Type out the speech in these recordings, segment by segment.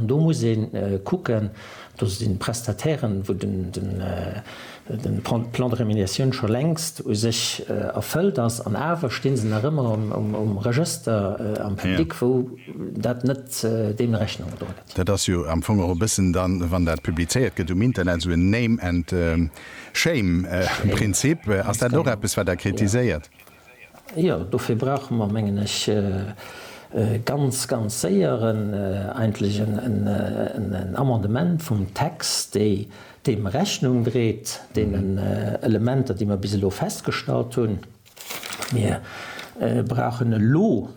Do muss ee kucken, do sinn d'Prestatairen, wou de Plan de rémunéation scho längst u sech erfëllt ass, an awer sti se nach ëmmer um Regëster am Public, wou dat net deem Rechnung gedroen gëtt. Dat ass jo am Fong och e bëssen dann, wann dat publizéiert gëtt um Internet, esou en Name and Shame-Prinzip. Ass dat och eppes, wat Der kritiséiert? Jo, dofir brauche mer, mengen ech, ganz, ganz séier eigentlech en Amendement vum Text, dee deem Rechnung dréit, deenen Elementer, déi mer bis elo festgestallt hunn. Mir brauchen elo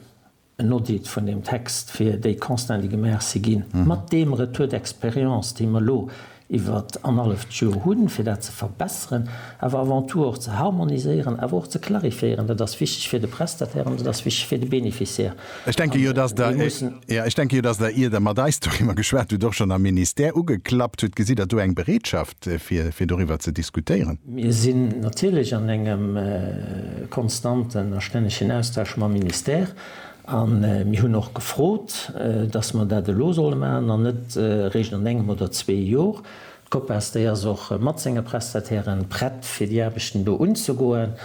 en Audit vun deem Text fir déi Constants, déi gemaach si ginn, mat deem Retour d'expérience, dee mer elo iwwer anhaleft Joer hunn, fir dat ze verbessern, awer avant tout och ze harmoniséieren, awer och ze clarifiéieren. Dat ass wichteg fir de Prestataire an dat ass wichteg fir de Bénéficiaire. Ech denke jo, datt Der, jo, ech denke jo, datt Der, ier Der mat eis doriwwer geschwat hutt, och schonn am Ministère ugeklappt hutt. Gesitt Der do eng Bereetschaft, fir doriwwer ze diskutéieren. Mir sinn natierlech an engem konstanten a stännegen Austausch mam Ministère a mir hunn och gefrot, datt mer dat elo solle maachen an net eréischt an engem oder zwee Jor. D'Copas, déi ass och mat senge Prestatairen prett, fir déi Aarbechten do unzegoen.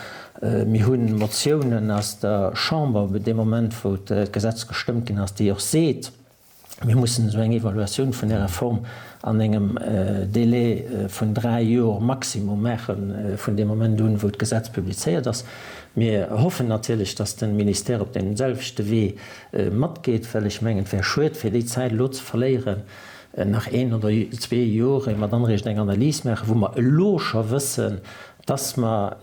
Mir hu Motiounen aus der Chamber, dee Moment wou d'Gesetz gestëmmt ginn ass, déi och seet, Mir mussen esou eng Evaluatioun vun där Reform an engem Délai vun dräi Joer maximum maache vun deem Moment un, wou d'Gesetz publizéiert ass. Mir hoffen natierlech, dass de Ministère op deem selwechte Wee matgeet, well ech mengen, et wär schued, fir déi Zäit elo ze verléieren, nach een oder zwee Joer, ier mer dann eréischt eng Analys maachen, wou mer elo scho wëssen, dass mer,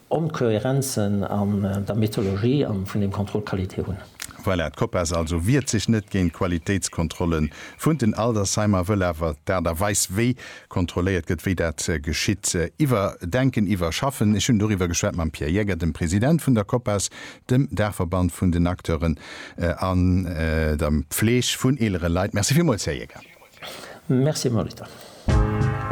Onkohärenzen an der Methodologie an vun dem Contrôle qualité hunn. Voilà, d'Copas also wiert sech net géint d'Qualitéitskontrolle vun den Aldersheimer, wëll awer d'Aart a Weis wéi kontrolléiert gëtt, wéi dat geschitt, iwwerdenken, iwwerschaffen. Ech hunn doriwwer geschwat mam Pierre Jäger, dem President vun der Copas, dem Daachverband vun den Acteuren an der Pfleg vun eelere Leit. Merci villmools, Här Jäger. Merci, Molitor.